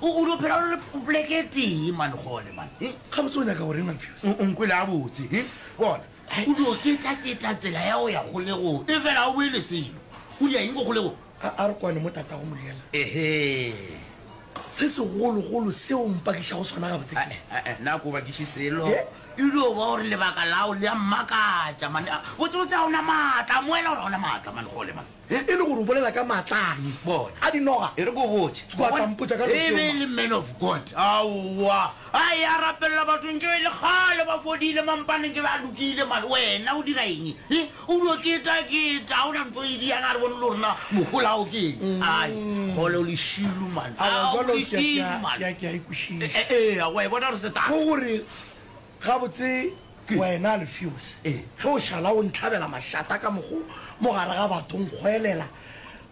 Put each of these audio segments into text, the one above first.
O o dio phela o le poleke e tee man gone man. He? Gabotse o nyaka goreng Mamphios? O nkwele a botse. He? Bona. O dio keta keta tsela ya o ya golego. E fela o boele selo. O dia eng ko golego? A a re kwane mo tata go moriela. Ehe. Se se golo golo se o mpakiša go sona gabotse ke. Eh eh eh na ko bakiše selo. He? E dio ba gore lebaka lao le a mmakatša man. Botse botse a ona matla. Moela gore a ona matla man gole man. Ge e le gore o bolela ka maatla a Ye, bona, a dinoga, e re ke o botše. Tswa, tla mpotša ka lotšeo, ma. E be e le man of God. Aowa. A eya a rapelela batho, nke e le kgale ba fodile, mampane nke be a lokile, mare wena o dira eng? He, o dio keta, keta, ga o na ntho e di yana, a re bone le rena mogolao ke eng. Mm. Ai, kgole o lešilu, man. Aowa, jalo, ke a, ke a, ke a, ke a ikušiša. E, e, e, a wa e bona re se tata. Go gore. Gabotse wena Alfios, ge o šala o ntlhabela mašata ka mokgo mo gare ga batho o nkgwelela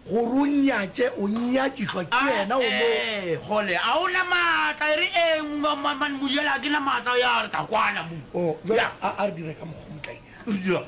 gore o nnyatše, o nnyakišwa ke yena o mo. Ae, kgole, a o na maatla e re eng? Mma-mma-mma-mma, Modiele, ga ke na maatla, ya re, tla kwana mo. Oh, jwale a, a re dire ka mokgo, motlae. Re dira'ng?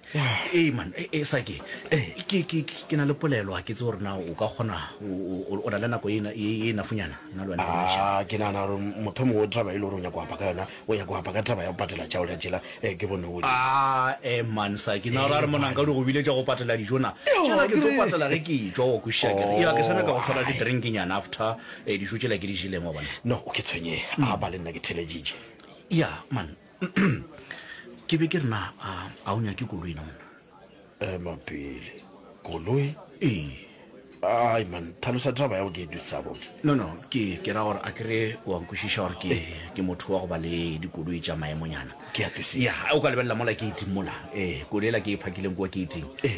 Ee, man, e, e, sa ke e, ke, ke, ke na le polelo a ke tse gore na o ka kgona o, o, o na le nako e na- e e nafunyana nna le wena re bontšhane. Ah, ke nagana gore motho mongwe taba e le gore o nyaka go apa ka yona o nyaka go apa ka taba ya go patela tšao ya tšela eh, ke bone o Ah, eh, man, sa ke na gore a re Ee, monanka man. di go bile tša go patela dijo na Yo, tšela ke ke tlo re- patela ge ke e tšwa wa kwešiša ke re ya ke sa nyaka go tshwara Oh, ai. di-drinknyana after eh, dijo tšela ke di jeleng wa bona no o ke tshwenyega a ba le nna ke theleditše ya man ke be ke re na a a o nyake koloi na monna ema pele koloi ee ai man tlhalosa taba ya go ke e tlisitsa botse no no ke ke ra gore a ke re wa nkwešiša gore ke ke motho wa go ba le dikoloi tša maemonyana Ke a tlisisa. ya o ka lebelela mola ke iting mola ee koloi ela ke e phakileng kwa ke iting ee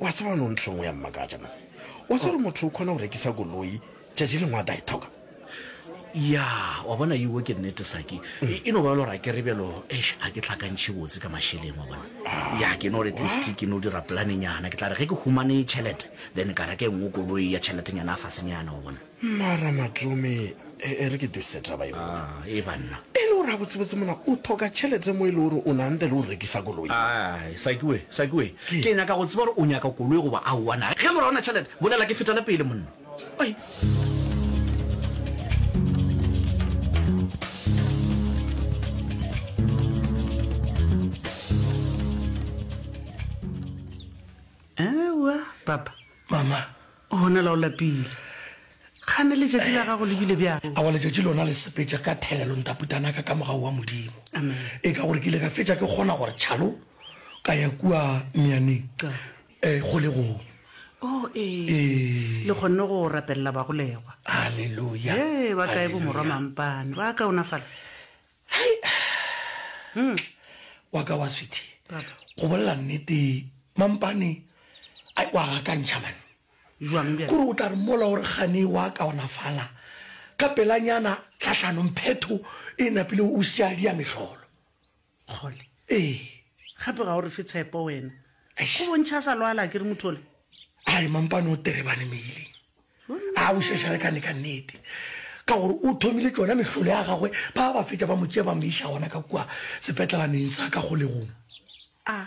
Wa tseba no ntho engwe ya mmakatša man. Wa tseba gore motho o kgona go rekisa koloi tšatši lengwe a tla e thoka. Ya, wa bona iwe ke nnete saki. E, e no ba le gore a ke re bjalo, eish, a ke tlhakantšhe botse ka mašeleng wa bona. Ah, ya, ke no re at least ke no dira planenyana. Ke tla re ge ke humane tšhelete then ka reka engwe koloi ya tšheletenyana a fasenyana wa bona. Mma Ramatome, e, e re ke duse taba ye. A, e banna. E le gore a botsebotse mona o thoka tšhelete mo e le gore o nanthe le o rekisa koloi. A, Sakiwe, Sakiwe, ke nyaka go tseba gore o nyaka koloi goba aowa na. Ge e le gore ga o na tšhelete, bolela ke fetele pele monna. Oi. Papa. Mama. Gona la o lapile. Kgane letšatši la gago le bile bjang? Awa letšatši lona le sepetša ka thelelo ntaputanaka ka mogau wa Modimo. Amen. E ka gore ke ile ka fetša ke kgona gore tšhalo ka ya kua meaneng Ka. e kgolegong. Oh, ee. Ee. Le kgonne go rapelela bagolegwa. Haleluya. Ee, ba kae bomorwa Haleluya. mampane? Ba kaonafala? Wa ka wa sweetie. Papa. Go bolela nnete mampane Ai, wa gakantšha man. Bjang bjale? Kore o tla re mola gore gane wa kaonafala ka pelanyana tlahlanong phetho e napile o sia dia mehlolo. Kgole. Ee. Gape ga o re fe tshepo wena. Eish. O bontšha a sa lwala a ke re motho ola. Ai, mampane o terebane meeleng. A o šešare ka neka nnete. Ka gore o thomile tšona mehlolo ya gagwe ba ba fetša ba mo tšea ba mo iša gona ka kua sepetlelaneng sa ka kgolegong. A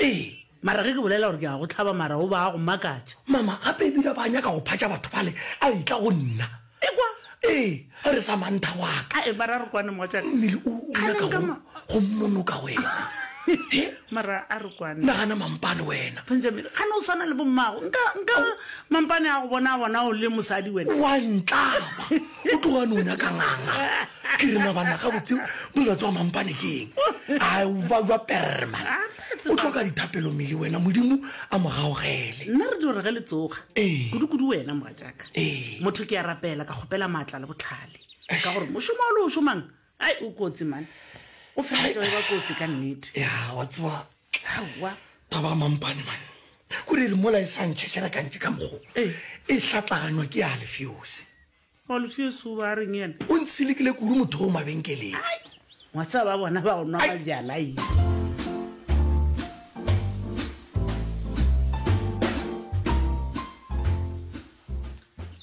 Ee, mara ge ke bolela gore ke a go hlaba mara o ba a go makatša. Mama, gape e bile ba nyaka go phatša batho bale, a etla go nna. Ekwa! Ee, a re Samantha wa ka. A eba ra re kwane mogatšaka. Mmele o, o nyaka go, go mmonoka wena. He? Mara a re kwane. Nagana mampane wena. Benjamin, gane o swana le bommago. Nka, nka, mampane a go bona a bona o le mosadi wena. Wa ntlaba! O tloga a no nyaka nganga. ke rena banna gabotse molato wa mampane ke eng a ba jwa perma o tlhoka dithapelo mele wena modimo a mo gaogele nna re dire ge le tsoga Ee. kudu-kudu wena moga jaaka Ee. motho ke ya rapela ka kgopela maatla le botlhale ka gore mošomo o le o šomang ai o kotsi mane o feleletsa e ba kotsi ka nnete ya wa tseba aowa taba ya mampane mane kore e re mola e sa ntšhetšhela kantše ka mogo Ee. e hlatlaganywa ke ya lefeose Wa lufeso o ba reng yena? O ntsilikile kudu motho o mabenkeleng. Ngwatsa ba bona ba o nwa ba bjala yi.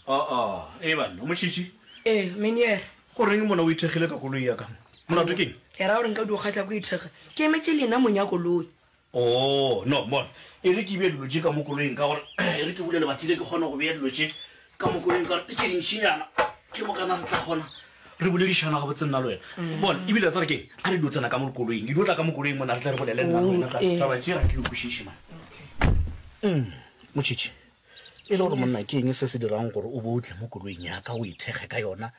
Ah ah, e banna, Mochichi. Ee, Meniere. Go reng mona o ithekgile ka koloi ya ka mo? Molato keng? Ke ra gore nka di o kgatla ko ithekga. Ke emetse lena monyako loi. Oo, no, bona, e re ke bee dilo tše ka mo koloing, ka gore e re ke bule lebati le ke kgone go bea dilo tše ka mo koloing, ka gore tše dintšinyana ke mo kana re tla kgona re boledišana ga botse nna le wena mm. bona ebile tsare ke a re dio tsena ka mo koloing dio tla ka mo koloing mona re tla re bolele nna le wena ka oh, taba tše ga ke dikwešiše mane mm, motšhitšhi e le gore monna ke eng se se dirang gore o bo o tle mo koloing yaka o ithekge ka yona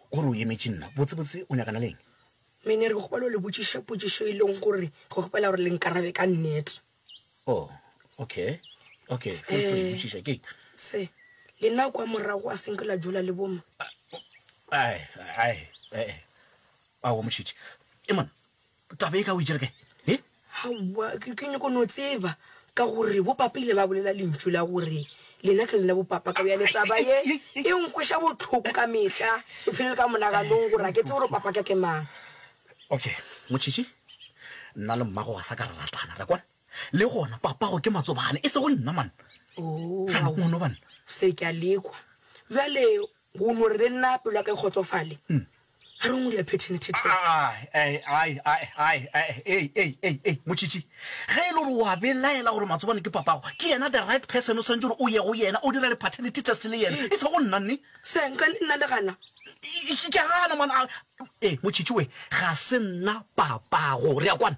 gore o emetše nna botsebotse o nyakana leng Mme ne re kgopela go le botšiša potšišo e leng gore re kgopela gore le nkarabe ka nnete. Oh, okay. Okay, feel free, Eh. botšiša ke. Se, le nna kwa morago a senke la dula le boma. Ai, ai, eh, eh. Ao, motšhitšhi. Emana, taba e ka o e tšere kae? He? Aowa, ke, ke nyoko no tseba, ka gore bopapa ile ba bolela lentšu la gore lena ke lena bopapa ka bjale taba ye e nkweša bohloko ka mehla e phelele ka monaganong gore a ke tse gore papa ka ke mang okay motšhitšhi nna le mmago ga sa ka re ratana ra kwana le gona papago ke matsobane e se go nna man ono bana se ke a lekwa bjale go no re le nna pelo ya ka e kgotsofale hmm. a re o ngwele phethene thethese motšhitšhi ge e le gore wa belaela gore matsobane ke papago ke yena the right person o swantse gore o ye go yena o dira di-paternity test le yena e se go nna nne senka nna le gana ke gana mona ee motšhitšhi we ga se nna papago re ya kwana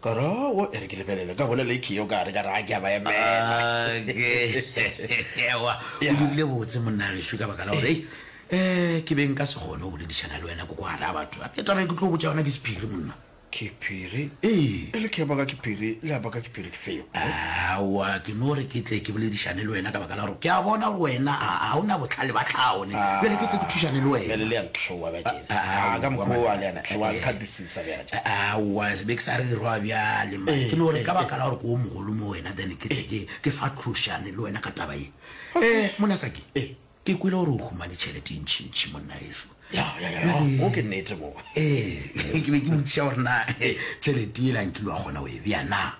Ka re, Aowa, e re ke lebelele. Ka bolela ekhio o ka re ka ra ke a ba emela. Okay. Aowa, o dirile botse, monna gešo, ka baka la gore, hei, um ke be nka se kgone go boledišana le wena ko kwa gare ga batho. Gape taba e ke tlo botša yona ke sephiri, monna. Ke phiri? Ee. E le ke ya baka ke phiri, le ya baka ke phiri ke feo. Aowa, ke no re ke tle ke boledišane le wena ka baka la gore ke a bona gore wena ga ga o na bohlale ba tlhaone. Bjale ke tle ke thušane le wena. Bjale le ya ntlhoa, Batšela. Aowa, monna. Ka mokgwa o a le yana, tlhoa, nkgatisetsa. Aowa, se be ke sa rerwa bjale, mma. Ke no re ka baka la gore ke o mogolo mo wena, then ke tle ke, ke fatlhošane le wena ka taba ye. Eh, monna Saki, ke kwele gore o humane tšhelete e ntšhintšhi, monna eso. Ya, ya, ya, ya, mo ke nnete mo. Eh, ke be ke motšiša gore na tšhelete yela nkile wa kgona go e bea na?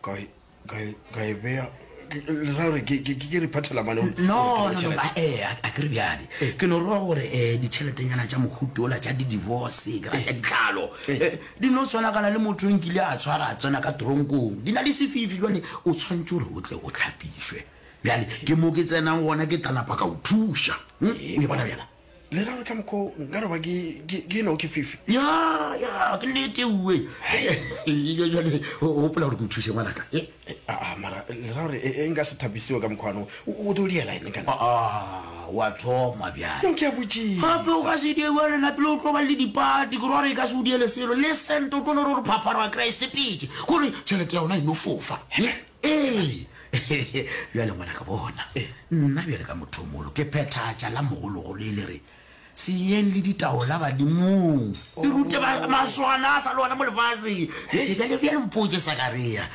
ka e beya gore ke re phathela mane no no ba eh a ke re bjale eh. ke no roa gore eh ditšheletenyana tša mohuto ola tša di-divorce ke ra tša ditlhalo eh. Eh, di no tshwanakana le motho nkile a tshwara a tsena ka tronkong di na le sefifi jale o tshwanetse gore o tle o tlhapišwe bjale ke mo ke tsenang gona ke tlalapa ka o thuša hm? o e bona bjala Le ra ka mokho nka roba ke ke ke no ke fifi. Ya ya ke nete uwe. Ile jwale o hopola hore ke o thuse ngwana ka. Eh, eh, a ah, ah, mara le ra hore e eh, eh, nka se thabisiwe ka mokho ano. O do diela ene kana. Ah, ah, wa thoma bya. No ke a butši. Hape o ka se die wa lena pele o tlo ba le dipati ke rore ka se o diele selo. Le sento tlo no re phapharo a kry sepitse. Gore chelete ya ona e no fofa. Amen. Ee, bjale ngwanaka bona, nna bjale ka motho o mogolo ke phethatša la mogologolo e le re, Se yeng le ditaola badimong, le rute ba maswana a sa le ona mo lefaseng. Bjale, bjale, bjale mpotše, Sakaria.